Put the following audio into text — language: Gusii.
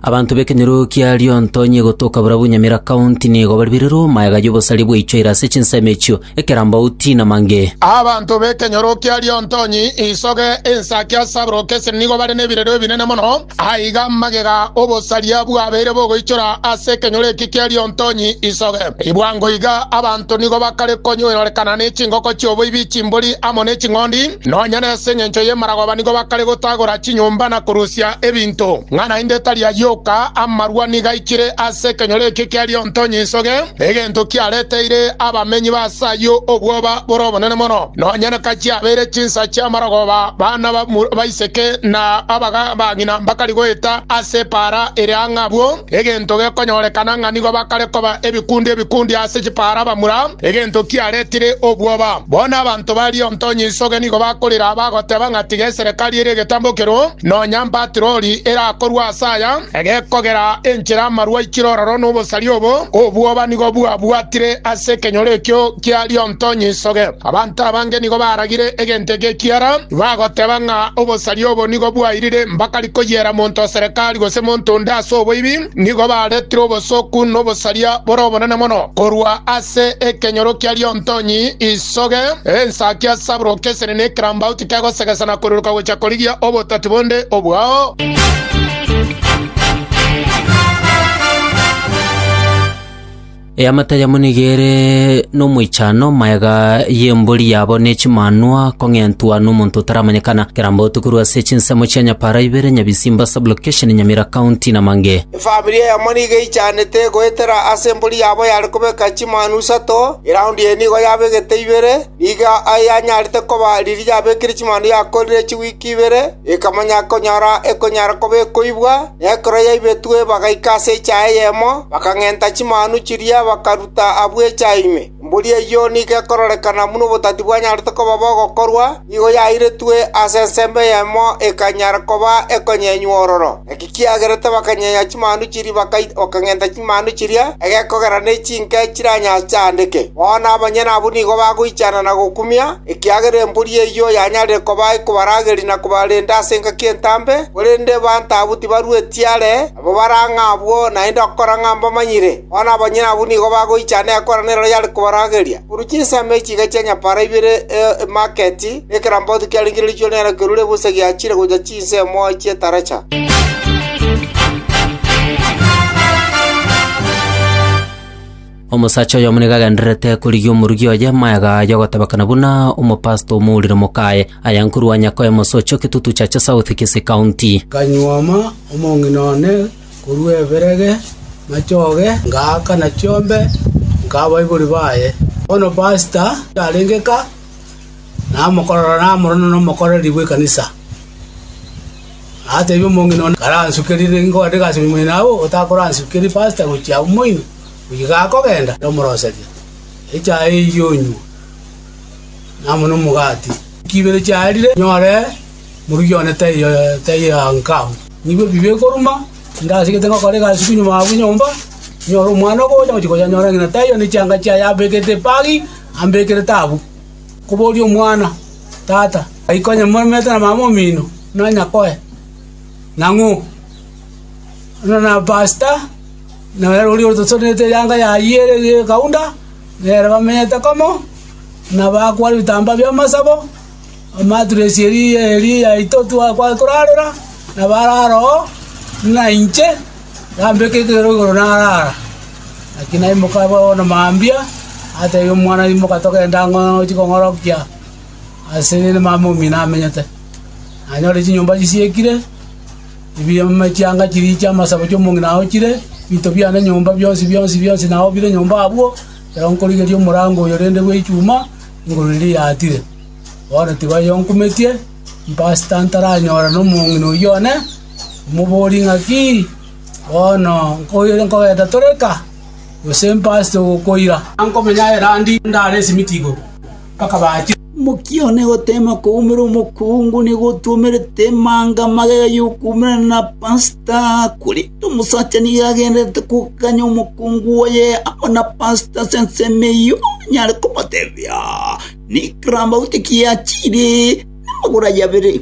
Abanto b'ekenyoro kia Liontonyi egotoka barabwo Nyamira County nigo baribirirwe omayega y'obosaria bwaichwe ira ase chinsemo echio, ekerambauti, na mange. Abanto b'ekenyoro kia Liontonyi isoge ensake ase aborokesi esiri nigo bare nebirero ebinene mono, aiga magega obosaria bwabeire bogoichora ase ekenyoro eki kia Liontonyi isoge. Bwango iga abanto nigo bakare konyoerorekana ne chingoko chi'oboibi, chimbori, amo ne ching'ondi. Nonya nase engencho y'emaragoba nigo bakare gotagora chinyomba na korusia ebinto, ng'a naende tari ayio oka, amarwa nigo aikire ase ekenyoro ekio kia Rionto Nyinsoge, egento kiareteire abamenyi b'aase ayio obwoba bore obonene mono. Nonya naka chiabeire chinsa chi'amaragoba, bana ba baiseke na abaga bang'ina mbakari goeta ase epaara ere ang'e abwo, egento gekonyorekana ng'a nigo bakare koba ebikundi ebikundi ase chipaara bamura, egento kiaretire obwoba. Bono abanto ba Liontonya Isoge nigo bakorire aba, goteba ng'a tiga eserekari ere egetambokero, nonya mpatiroli erakorwe ase aya, egekogera enchera amarwa aikire ororo n'obosaria obo, obwoba nigo bwabwatire ase ekenyoro ekio kia Liontonya Isoge. Abanto abange nigo baragire egento eke ekiara, bagoteba ng'a obosaria obo nigo bwairire mbakari koyiera monto oserekari gose monto onde ase oboibi, Nigo baretire obosooku na obosaria bore obonene mono korwa ase ekenyoro kia Liontonyi isoge, ensa kia Sabro kesire ne ekerambauti kegosegesa na koruruka gochia korigia obotati bonde obwao. Eamate yamo nigo ere nomoichano, magega y'embori yabo ne chimanwa kong'entwa nomonto otaramanyekana. Kerambe otokerwe ase chinsemo chia Nyapara ibere, Nyabisimba Sub-location, Nyamira County, Namange. Efamiri eyemo nigo eichanete goetera ase embori yabo yare kobeka chimanwa isato, eround eye nigo yabegete ibere. Nigo ayanyarete koba riria yabekire chimanwa yakorire chiweek ibere. Ekamanya konyora ekonyara koba ekoibwa, na ekero yaibetwe bagaika ase echaha eyemo, bakang'enta chimanu chiria bakaruta abwo echaha ime. Mburi eyio nigo ekororekana buna obotati bwanyarete koba bogokorwa, nigo yairetwe ase ensemo eyemo ekanyara koba ekonyenywa ororo. ekiagera tibakanyenya chimanu chiria bakaita bakang'enta chimanu chiria egekogera ne chinke chiranyachaandeke. Bono abanyene abwo nigo bagoichana na gokumia, ekiagera embori eyio yanyarire koba ekobarageria na kobarenda ase engaki entambe, korende baanto abwo tibarueti are, nabo bare ang'e abwo naende okora ng'a mbamanyire. Bono abanyene abwo nigo bagoichana ekorano eroro yare kobarageria, korwa chinsemo echi chiga chia nyapaara ibere, e emaketi, na ekerambauti kiarengereretigwe nero kerure bosa giachire gocha chinguru. Chinsemo chi'etaracha. Omosacha oyomo nigo agendererete korigia omorugi oye amaega aya ogotebekana buna omopastor omourire mokaye, aya nkorwa Wanyakoya Mosocho, Kitutu Chache South, Kisii County. Nkanyuoma omong'ina one korwa eberege machoge, ngaakana chiombe, nkaa abaibori baye. Bono pastor arenge ka. Na amokorora namorana nomokoreri bw'ekanisa, ateebie omong'ina one karansukerie nigo ande gasemi moino agwo, otakoransukerie pasta gochia agwo moino, oyio gakogenda omoroserie echae eyio onywe, na amo nomogati. Chibere chiarire nyore morugi one taiyo yankama. Nigo ebibe ekoruma, tindasigete ngokora egasi buna nyuma abwo nyomba, nyore omwana ogocha, ngochia koyanyora ng'ina taiyo ne chianga chiaye ambekete epagi, ambekerete abwo. koboria omwana, Tata, ai konya moremete na mama omino, nonya koe? Nang'o? Buna na pasta, nonya oria otosorenete erianga yayio ere y'ekaunda, nere bamenyete komo, na bakwaria ebitamba bi'amasabo, amaturesi eria eria yaito twa- twa- torarera, na bare aroo, buna inche. “Yambeka etuero igoro naraara. Naki naimoka bono na mambia, nateebia omwana, Imoka togende ang'o nochie kong'orokia aase niere mama omino amenyete. Nanyore chinyomba chisiekire, ebiya echianga chiriiche, amasabo chi'omong'ina aochire, ebinto biane nyomba bionsi bionsi bionsi nao bire nyomba abwo, ekero nkorigereria omorango oyo rende bw'echuma, igoro riria riatire. Bono tibayoonkumetie, mpasita ntaranyora nomong'ina oyio one. Moborie ng'aki? Bono nkoire nkogeta tore eka, gose mpaste gokoira? Nkomenya erandi ndare esimiti igoro mpaka bache. Mokione gotema koumera omokungu nigo otwomerete emanga magega y'okoumera na pasta, korende omosacha nigo agendererete kogakanya omokungu oye amo na pasta ase ensemo eyio, onyare komotebia, Nikrambaute ki achiire namagoro aye abere?